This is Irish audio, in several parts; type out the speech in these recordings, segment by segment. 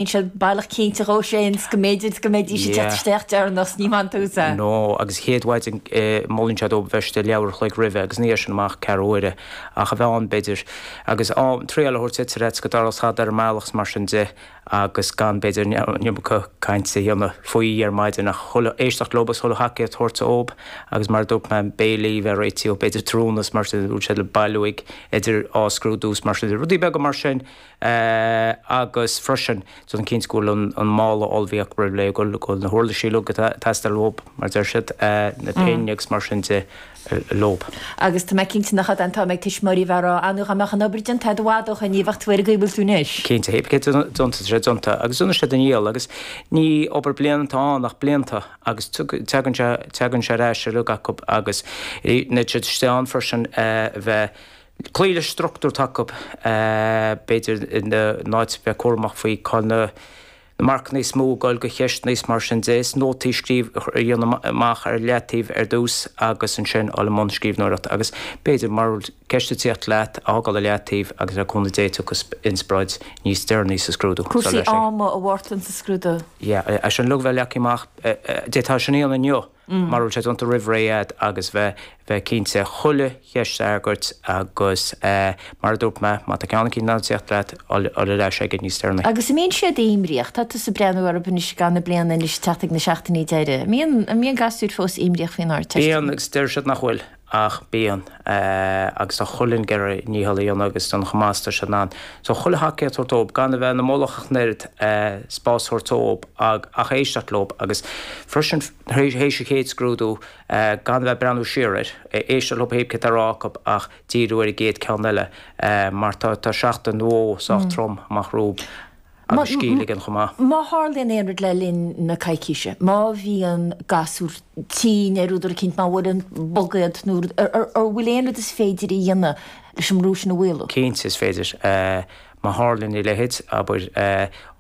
níl siad baileach cinnte dhó sin 's go mb'fhéidir go mbeidís ag teacht isteach deireanach 's ní maith an tús é. No, agus an chéad mhaidin molann siad dóibh bheith istigh leathuair a chloig roimhe agus uaidh sin amach ceathrú uaire ach a bheith ann b'fhéidir agus trialacha a thabhairt duit ar fhaitíos go dtarlódh tada ar an mbealach 's mar sin de agus gan b'fhéidir an iomarca caint a dhéanamh faoi ar maidin ach éisteacht leob is chuile thacaíocht thabhairt dhóib agus mar a dúirt mé béilí bheith réitithe b'fhéidir tráthnóna 's mar sin de má tá siad le bailiú idir dhá scrúdú 's mar sin de rudaí beaga mar sin Sea agus freisin déanamh cinnte go bhfuil an mála ullmhaithe acu roimh ré, go bhfuil na huirlisí uilig atá ag teastáil uathu, mar a deir siad, na pinn agus mar sin de uilig. Agus tá mé cinnte nach é an t-am ag tuismitheoirí a bheith ag rá, An bhfuil an obair déanta? Ró-fhada ó shoin, ní bheadh tú ag cur na ceiste anois. Cinnte, pébí céard atá déanta, tá sé déanta agus déanfaidh siad a ndícheall agus ní obair bliana atá ann ach blianta agus teagann sé, teagann sé ar ais uilig acu agus beidh siad istigh ann freisin a bheith, cloí le struchtúr atá acu, b'fhéidir, in áit, a bheith cúramach faoi cá bhfuil na marcanna is mó ag gabháil do cheist nó is mar sin de. Is nótaí a scríobh, a dhéanamh amach ar leataobh ar dtús agus ansin dul i mbun scríbhneoireachta. Agus b'fhéidir, mara bhfuil ceist ag tíocht leat, a fhágáil i leataobh agus le cúnamh Dé tiocfaidh inspioráid níos deireanaí sa scrúdú. Cúrsaí ama an-tábhachtach sa scrúdú. Yeah, é sin, uilig a bheith leagtha amach, d'fhéadfá sin a dhéanamh inniu. mar a raibh sé déanta roimh ré agat agus bheith bheith cinnte chuile cheist a fhreagairt agus mar a dúirt mé má tá ceann eicínt nach bhfuil ag tíocht leat a ghoil ar ais aige níos deireanaí. Agus an mbíonn siad imníoch? Tá tusa ag breathnú orthu anois i gcaitheamh na bliana anois ag teacht ag na seachtainí deireadh. An mbíonn an mbíonn gasúir fós imníoch faoin Ardteist? Bíonn agus deir siad nach bhfuil. ach bíonn. agus tá chuile dhuine ag iarraidh a ndícheall a dhéanamh agus déanamh chomh maith is atá siad in ann. So chuile thacaíocht a thabhairt dóibh, gan a bheith ina mullach ach an oiread, spás a thabhairt dóibh ach éisteacht leo agus freisin tar éis an chéad scrúdú gan a bheith ag breathnú siar air, éisteacht leo pébí céard atá le rá acu ach díriú ar an gcéad ceann eile mar tá seachtain nó dhó sách trom amach rompu. agus scil í sin chomh maith. Má tharlaíonn aon rud le linn na coicíse, má bhíonn gasúr tinn ar údar eicínt, má bhuaileann bug iad, nó an bhfuil aon rud is féidir a dhéanamh leis an mbrú sin a mhaolú? Cinnte is féidir. Má tharlaíonn a leithéid, abair, a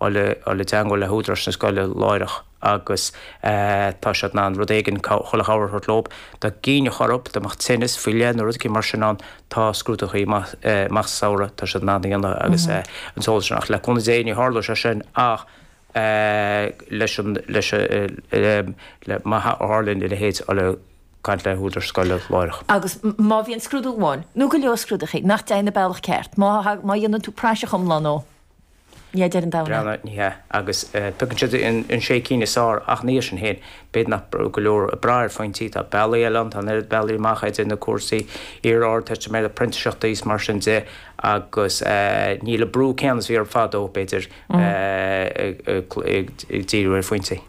ghoil i dteangmháil le húdaráis na scoile láithreach. agus tá siad in ann rud éigin, chuile chabhair a thabhairt dóibh. Dá gcinnfeadh orthu, dá mbeadh tinneas faoi leith nó rud éigin mar sin ann, tá scrúduithe amach sa samhradh, tá siad in ann iad a dhéanamh agus an t-eolas sin, ach le cúnamh Dé ní tharlóidh sé sin ach leis an, leis an, le, má tharlaíonn a leithéid, a ghoil ag caint le húdaráis na scoile láithreach. Agus má bhíonn scrúdú amháin, nó go leor scrúduithe, nach dtéann an bealach ceart, má, má dhéanann tú praiseach iomlán dhó, hé deireadh an domhain é. Cinnte, ní hea, agus piocann siad an sé cinn is fearr, ach ina dhiaidh sin féin. B'fhéidir nach go leor ag brath ar phointí, tá bealaí eile ann, tá an oiread bealaí amach idir na cúrsaí, iar-Ardteistiméireachta, printíseachtaí is mar sin de, agus níl an brú céanna is bhí orm fadó, b'fhéidir, ag díriú ar phointí.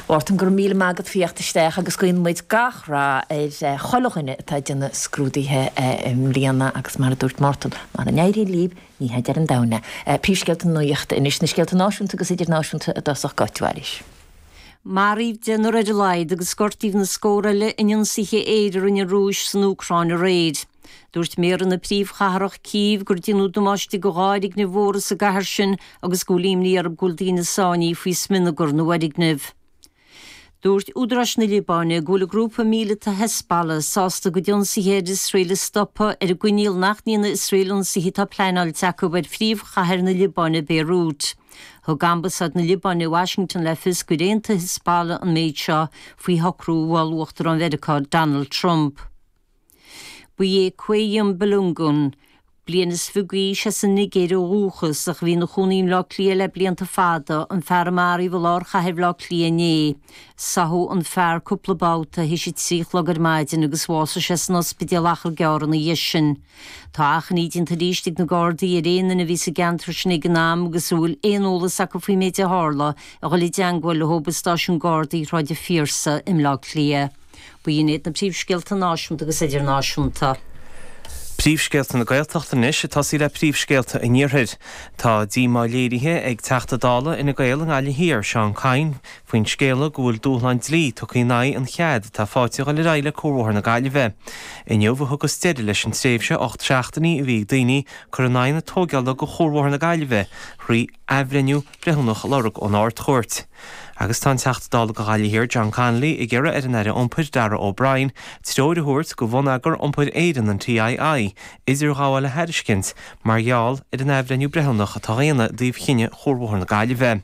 Mhártain, go raibh míle maith agat, as a thíocht isteach agus guíonn muid gach rath ar chuile dhuine atá ag déanamh scrúduithe i mbliana agus mar a dúirt Mártan, mara n-éiríonn lib, ní hé deireadh an domhain é. Príomhscéalta na nuachta anois, na scéalta náisiúnta agus idirnáisiúnta i dtosach goit, bhailis. Maraíodh deichniúr ar a laghad agus gortaíodh na scórtha eile in ionsaithe aeir a rinne an Rúis san Úcráin aréir. Dúirt méara na príomhchathrach, Cív, gur déanadh damáiste go dhá fhoirgneamh mhóra sa gcathair sin agus go bhfuil imní orthu go bhfuil daoine sáinnithe faoi smionagar na bhfoirgneamh. Dúirt údaráis na Liobáine go bhfuil an grúpa míleata Hezbollah sásta a gcuid ionsaithe ar Iosrael a stopadh, ar an gcoinníoll nach ndéanfaidh Iosrael ionsaithe atá pleanáilte acu ar phríomhchathair na Liobáine, Béiriút. Thug Ambasáid na Liobáine i Washington le fios gur aontaigh Hezbollah an méid seo faoi shocrú a mhol Uachtarán Mheiriceá Donald Trump. Ba é Qayyum Balogun, bliain is fiche d'aois, as an Nigéir ó dhúchas, ach a bhí ina chónaí i mBleá Cliath le blianta fada, an fear a maraíodh i lár chathair Bhleá Cliath inné. Sádh an fear cúpla babhta théis a trí a chlog ar maidin agus bhásaigh sé san ospidéal achar gearr ina dhiaidh sin. Tá achainí déanta arís ag na Gardaí ar aon duine a bhí sa gceantar sin ag an am agus a bhfuil aon eolas acu faoin méid a tharla a dhul i dteangmháil leothub i Stáisiún Gardaí Shráid an Phiarsaigh i mBleá Cliath. B'in iad na príomhscéalta náisiúnta agus idirnáisiúnta. Príomhscéalta na Gaeltachta anois ag tosaí le príomhscéalta an iarthair. Tá díomá léirithe ag Teachta Dála Fhine Gael i nGaillimh Thiar, Seán Kyne, faoin scéala go bhfuil dúshlán dlí tugtha in aghaidh an chead atá faighte dhul ar aghaidh le Cuarbhóthar na Gaillimhe. Inniu a thugas deireadh leis an tréimhse ocht seachtainí a bhí ag daoine cur in aghaidh na tóigeála go Chuarbhóthar na Gaillimhe thrí athbhreithniú breithiúnach a lorg ón Ard-Chúirt. Agus tá an Teachta Dála do Ghaillimh Thiar, John Connolly, ag iarraidh ar an Aire Iompair, Darragh O'Brien, treoir a thabhairt go Bhonneagar Iompair Éireann, an TII, idirghabháil a thairiscint mar gheall ar an athbhreithniú breithiúnach atá á dhéanamh i dtaobh chinneadh Chuarbhóthar na Gaillimhe.